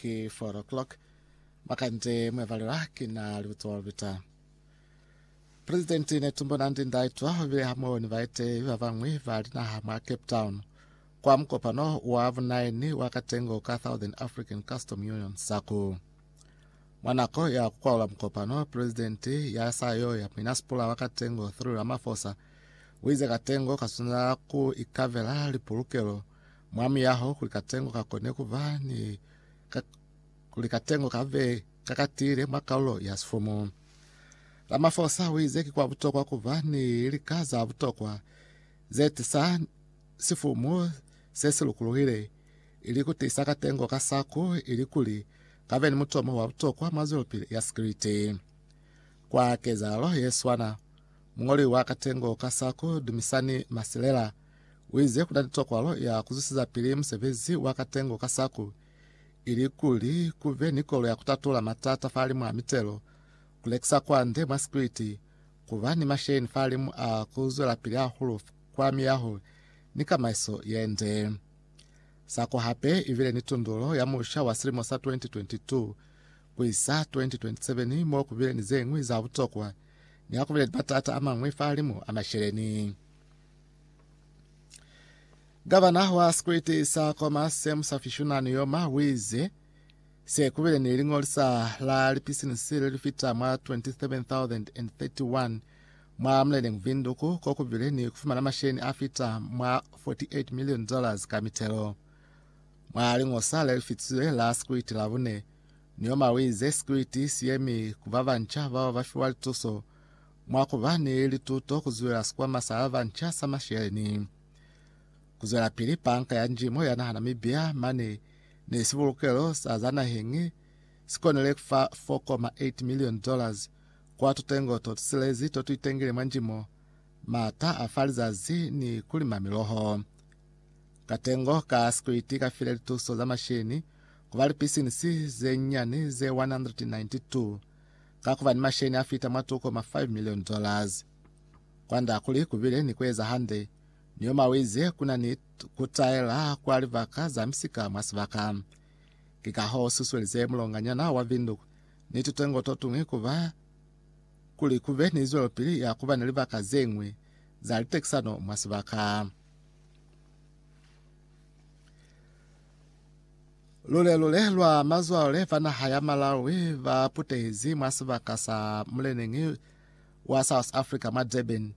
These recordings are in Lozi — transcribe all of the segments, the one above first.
ki 4 o'clock makande mwevalelwa ki na libuto lubita Presidenti Netumbo Nandi Ndaitwa be hamoho ni baetehi ba bañwi ba linaha mwa Cape Town kwa mukopano wa bunaini wa katengo ka Southern African Custom Union SACU. Mwa nako ya kukwaula mukopano, Presidenti ya sayo ya muinasipula wa katengo Cyril Ramaphosa wize katengo kaswanela ku ikavela lipulukelo mwa miyaho kuli katengo ka kone ku ba ni ka, kuli katengo ka be ka katile mwa kaulo ya sifumu. Ramaphosa o ize ki kwa butokwa ku ba ni lika za butokwa ze tisa sifumu se si lukuluhile ili ku tisa katengo ka saku ili kuli ka be ni mutomo wa butokwa mwa zwelopili ya sikiliti. Kwa kezahalo ye swana, mungoli wa katengo ka saku Dumisani Masilela Uize kuna ni tokolo ya kuzwisizapili musebezi wa katengo ka saku, ilikuli kube ni kolo ya kutatula matata fahalimu a mitelo, kulekisa kwande mwa sikwiti, kuba ni masheni fahalimu a kuzwelapili hahulu kwa miyaho ni kamaiso yende. Saku hape ibile ni tundulo ya musha wa silimo sa 2022 kuisa 2027 mo kubile ni zeñwi za butokwa ni hakubile ni matata amañwi fahalimu a masheleni. Gavana wa sikwete sa kwa Masem Safishunani Yoma wize se kubile ni lingolisa la lipisinisi le lifita mwa 27,031 mwa muleleng Vinduku ko kubile ni kufumana masheni a fita mwa 48 million dollars ka mitelo mwa lingosa le lifitizwe la sikwiti la bune. Yoma wize sikwiti si yemi ku babanca bao ba fiwa lituso Mwa ku ba ni lituto ku zulela sikwama sa ba banca sa masheleni, ku zwelapili Banka ya Njimo ya naha Namibia mane ni sibulukelo sa za naheng si konile ku fa 4.8 milioni dollars kwa tutengo to tusilezi to tu itengile mwa njimo, mata a fa lizazi ni ku lima miloho. Katengo ka sikwiti ka file lituso za masheleni ku ba lipisinisi ze nyani ze 192. ka kuba ni masheni a fita mwa tuko ma 5 million dollars. Kwand'a kuli ku bile ni ku eza hande, Neoma u ize ku na ni ku taela kwa libaka za misika mwa sibaka. Ki ka h'o u susuelize mulonganyana wa Windhoek ni tutengo to tuñwi ku ba kuli ku be ni zwelopili ya ku ba ni libaka ze ñwi za litekisano mwa sibaka. Lule-lule lwa mazwale ba naha ya Malawi ba putehezi mwa sibaka sa muleneñi wa South Africa mwa Durban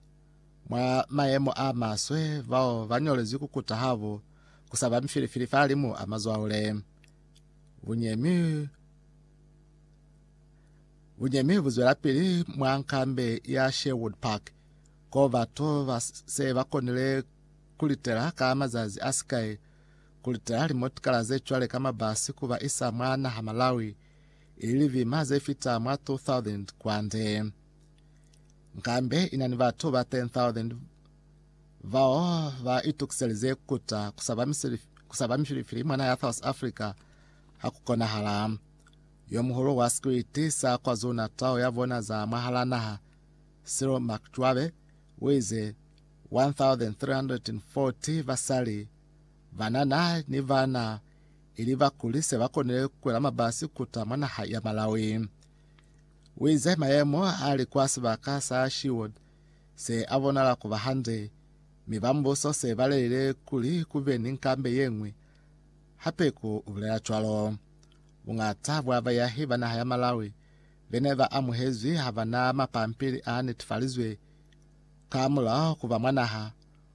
mwa mayemo a maswe bao ba ñolezwi ku kuta habo ku sa ba mifilifili fa limu a mazwale. Bunyemi Bunyemi bu zwela pili mwa nkambe ya Sherwood Park ko batu ba se ba konile ku litela ka mazazi a sikai Ku lita limotikala ze cwale ka mabasi ku ba isa mwa naha Malawi ili livima ze fita mwa 2,000 kwande. Nkambe ina ni batu ba 10,000 bao ba itukiselize kuta ku saba mifilifili mwa naha ya South Africa ha ku konahala. Yo muhulu wa sikwiti sa KwaZulu-Natal ya bona za mwahal'a naha, Cyril Makjoabe, u ize 1,340 basali Banana ni bana ili bakuli se ba konile ku kwela mabasi kuta mwa naha ya Malawi. U ize mayemo a li kwa sibaka sa Sherwood se a bonala ku ba hande, mi ba mbuso se ba lelile kuli ku be ni nkambe ye ñwi, Hapeku u bulela cwalo. Buñata bwa bayahi ba naha ya Malawi be ne ba amuhezwi ha ba na mapampili a netifalizwe ka mulaho ku ba mwa naha,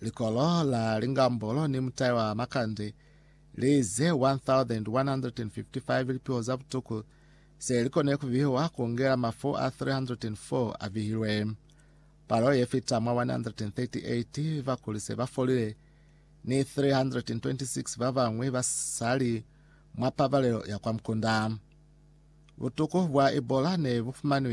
Likolo la Lingambolo ni mutai wa Makande li ze 1,155 lipiho za butuku se li kone ku vihiwa ku ngela mafu a 304 a vihilwe. Palo ye fita mwa 138 ba kuli se ba folile, ni 326 ba bañwi ba sa li mwa pabalelo ya kwa mukunda. Butuku bwa Ebola ne bu fumanwi